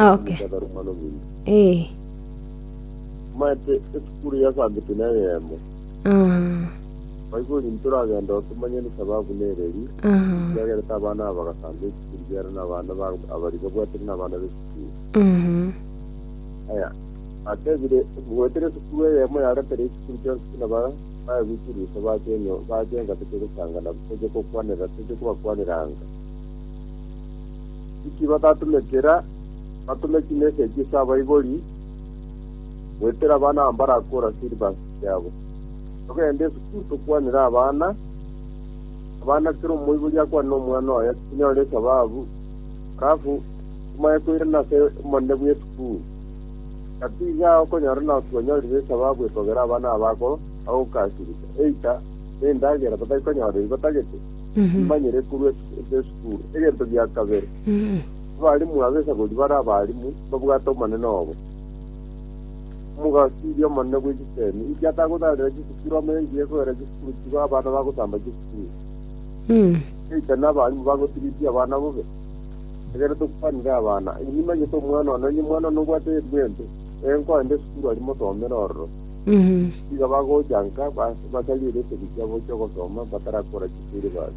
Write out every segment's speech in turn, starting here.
Okay. Takarumana ominto. Eh. Maete esukuru yasambete nere yemo. Ah. Baibuli nturagenda otomanye nesababu nereri. Ah. Yagerete abana aba bagasamba esukuru yare na abana ba abari babwatire na abana b'esukuru. Mhm. Aya. Atebire bwetire esukuru eyemo yaretera esukuru chionsi buna ba bayagwikire iso bakenyo bakenga toche gosangana toche kokwanera toche kobakwanera anga. Inki batatumekera? Batume chimeseji ase abaibori, goetera abana abo mbarakore silver yabo. Togende esukuru tokwanere abana, abana kera omoibori akwane omwana oye tinyore esababu, alafu tomaye koirana ase omonene bw'esukuru. Gati iga okonyora nao tibanyoririe esababu ekogera abana abo ako bagokasirigwa, eita nendagera batari konyora eyio batagete, bamanyire korwa ase esukuru. Turo. Egento gia kabere, abarimu ab'esagori bare abarimu mbabwate omonene obo. Omogasiria omonene bwe chisemi inki atagotaarera chisukuru amo enki egoera chisukuru chigo abana bagosamba chisukuru? Eita n'abarimu bagotiridia abana bobe? Egere tokwanire abana, inwe nimanyete omwana one, onye omwana one obwate erimwembe, ee, nkoende esukuru aria mosomere ororo. Nigo bagocha nka, ba- basariere esegi chiabo chi'ogosoma, batarakora chifeelebasi.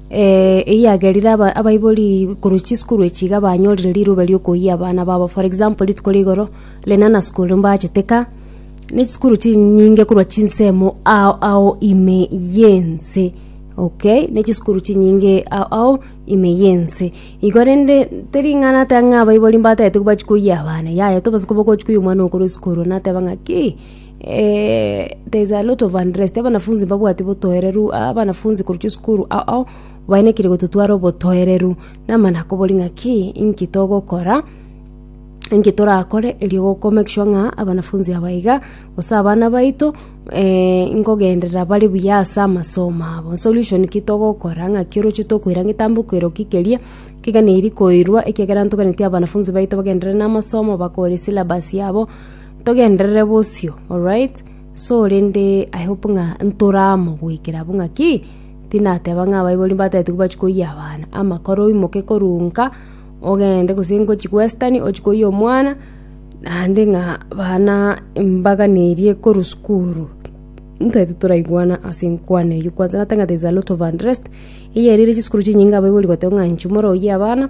Eyio yagerire abaibori korwa chisukuru echi iga banyorire riroba riokoyia abana babo. For example, rituko ria igoro, Lenana school mbachete ka, na chisukuru chinyinge korwa chinsemo ao ao ime yense, okay, ne chisukuru chinyinge ao ao ime yense. Igo rende tering'ana ata ng'a abaibori mbatete bachi koyia abana, yaya tobosa koba ogochi koyia omwana oo korwa esukuru, nateba ng'a ki. There is a lot of unrest, abanafunsi mbabwati botoereru, abanafunsi korusia esukuru ao bainekire gototwara obotoereru, namana kobori ng'a ki inki togokora inki torakore erio goko make sure ng'a abanafunsi aba iga gose abana baito nkogenderera bare buya ase amasomo abo. Solution ki togokora ng'aki oroche tokoira getambe okoira ki keria kegeneri koirwa ekiagera ntogani abanafunsi baito bagenderere namasomo bakore esyllabus yabo. Togenderere bosio, alright? So rende I hope ng'a ntoramogoikera abwo ng'a ki? Tinateba ng'a abaibori mbatete kobachia koyia abana, ama kora oimoke korwa nka, ogende gose ngochie western ochie koyia omwana, naende ng'a abana mbaganerie korwa sukuru. Ntaete toraigwana ase enkwana eyio kwanza nateba ng'a there is a lot of unrest, eyio ere chisukuru chinyinge abaibori goteba ng'a inche omorwa oyie abana.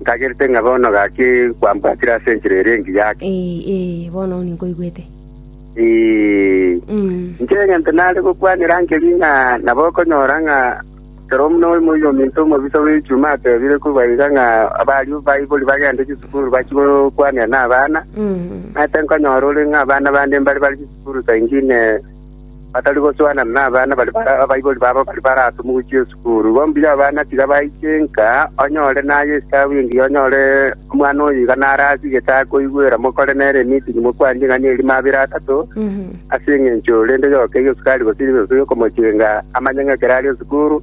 Ntagerete ng'a bono gaki kwambwatire ase enchera ere engiya ake. Ee, ee, bono ninkoigwete. Ee, inche egento nare gokwanera nkeri ng'a nabo okonyora ng'a kero buna oyomo y'ominto omobisa bw'echuma atebire kobua iga ng'a abaria baibori bagende chisukuru bachie gokwanera nabana, naete nkonyora ore ng'a abana bande mbare bare chisukuru saa ingine batari gosuanana nabana baria abaibori babo bari baratomugwichie esukuru. Igo mbuya abana tiga baiche nka, onye ore naye esitabu engiya onyore omwana oyo iga naro ase getaa koigwera mokore nere emitinyi mokwanie ing'ani eria mabera atato ase engencho rende yoka erio sukari gose ribeso riokomochenga amanye ng'a ekero are esukuru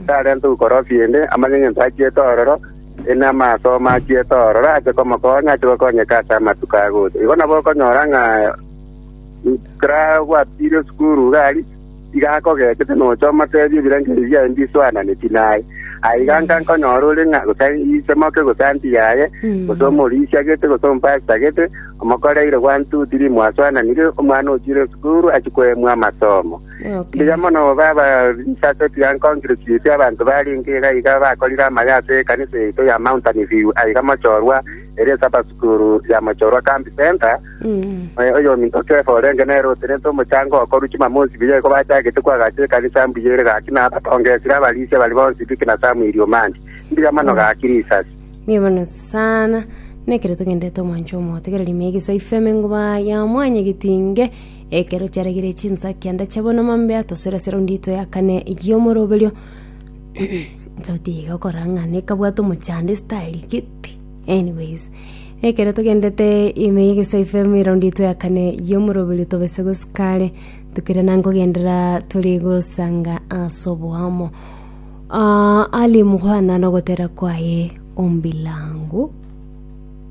tarente ukorofi ende amanye ng'encho achiete ororo ende amasomo achiete ororo ache komokonya ache gokonyeka ase amatuko agocha. Igo nabo okonyora ng'a Nkarabwatire sukuru iga aria, tiga akogechete nocha omoteebie ebirengererio biaye mbiswananetie naye. Aye iga nka nkonyora ore ng'a gose isemoke gose anti yaye, gose omorisia gete, gose omopasita gete, omokoreire gwantuti rimwaswananire, omwana ochiire sukuru achia koemwa amasomo. Mbuya mono obe abarisia ase tiga nkongirochiretie abanto barenge iga iga bakorire amabe ase ekanisa yaito ya Mountain View aiga mochorwa ere esaba sukuru ya mochorwa Camp Centre, Moyo oyominto Kefa orenge nere otenete omochango okoru chimama onsi biya iko bachagete koagacha ekanisa mbuya ere gaki na abatonge esire abarisia bari bonsi Biki na Samueli Omandi. Mbuya mono gaki risasi. Mbuya mono sana nekero togendete omwancho omotegereri meyege isa ifeme nguba ya mwanya getinge ekero chiaregire chinsaki anda chabona mambe atosera sera undi ito ya kane yomoroberio totiga okorang'ana ekabwata omochando esitaeri gete Anyways, ekero togendete ime y'egesaku FM eround yetu ya kane y'omoroberi tobese gosuka are tokire na nkogendera tore gosanga ase oboamo Ah, ali mukwana nogotera kwaye ombilangu